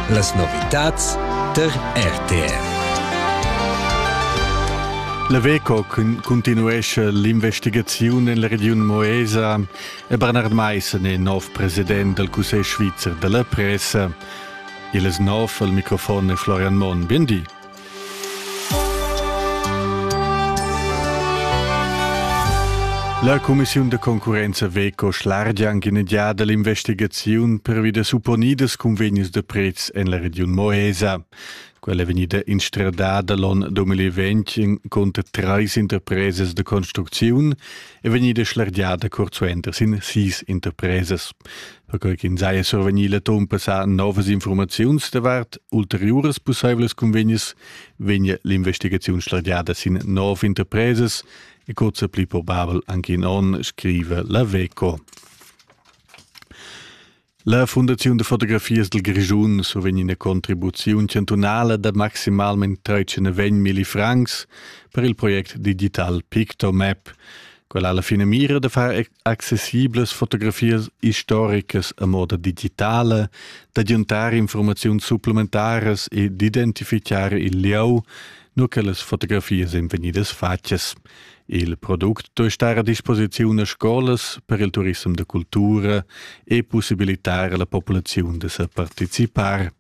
Las novitads tar RTR. La Veco continuescha l'investigaziun en la regiun Moesa e Bernard Meissen è nov president dal Cussegl svizzer da la pressa. Il es nov al microfon è Florian Monn. Bien di. La cumissiun da concurrenza Veco schlargia anche in giada l'investigaziun pervi da supponidas convegnis da prezs en la regiun Moesa. Quella è vegnida instradada l'on 2020 conter treis interpresas de construcziun è vegnida schlergiada curt suenter sin sis interpresas. Perquai ch'ins saja survegnì l'atun passà novas informaziuns davart ulteriuras pussaivlas convegnas, vegnia l'investigaziun schlergiada sin nov interpresas e kurz pli probabel anche in onn, scrive la WECO. La Fundaziun da fotografias dal Grischun survegn ina contribuziun chantunala da maximalmain 13,000 francs per il project digital Pictomap. Quella ha la finamira da far accessiblas fotografias istoricas a moda digitala, d'aggiuntar informaziuns supplementaras e d'identifichare il lieu, nur che las fotografias èn vegnidas fatgas. Il product duei star a disposiziun a scolas per il turissem da cultura e possibilitar alla populaziun da sa participar.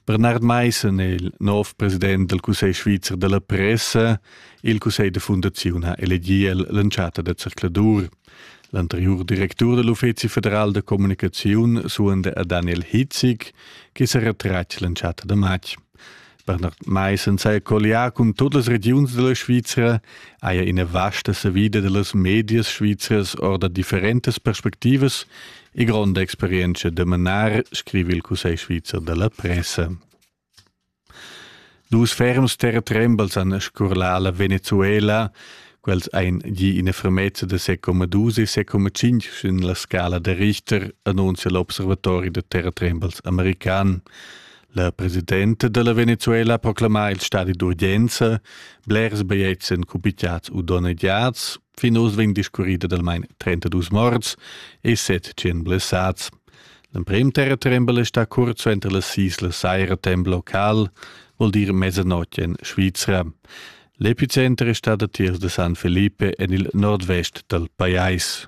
Bernard Meissen è il nov president del Cussegl svizzer della pressa. Il Cussegl de Fundazione ha elegiu l'entschatta da zercladur. L'anterior directur dell'Uffizi federal de comunicazione suende a Daniel Hitzig, che se retratg l'entschatta de matg. Bernard Meissen sei colliar cun tut las regiuns della Svizra haja ina vasta savida dellas medias svizras orda differentas perspectivas e gronda experienza da manar, scrive il Cussegl svizzer della pressa. Dus ferms terretrembals han scurlà la Venezuela, quels ein gi ina fermezza de 6,2 e 6,5 sin la scala der Richter, annunzia l'observatori de terretrembals american. La presidenta dalla Venezuela proclama il stadi d'urgenza, blers baiets en cupitiats u donnegiats, fin oz vegn discurrida d'almain 32 morts e 700 blessats. L'emprim terratrembel è stà curt suenter la Sisla Saira temp local, vuol dir mezzanotte in Svizra. L'epicenter è stata tiers de San Felipe en il nordvest dal pajais.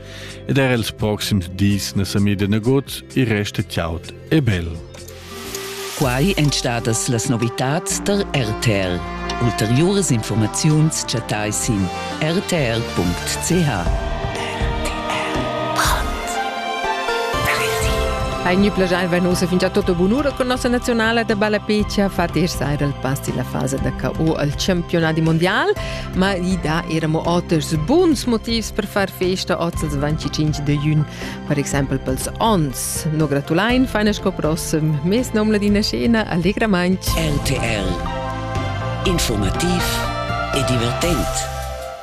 ed er els proxims dis na sa mida nagut e resta chaud e bel. Quai èn stadas las novitads da RTL. Ulteriuras informaziuns chattai sin rtl.ch. Hai gni plagiar venuso fin già tutto bunura con nostra nazionale de balapeccia, fatisch saira il pass della fase da KO al campionati mondial. ma i da era mo oters buns motivs per far festa oz als 25 de jun, per exempel pels ons. No gratulain feina sco prossem, mes nom ladina scena allegramaint. RTL Informativ e divertent.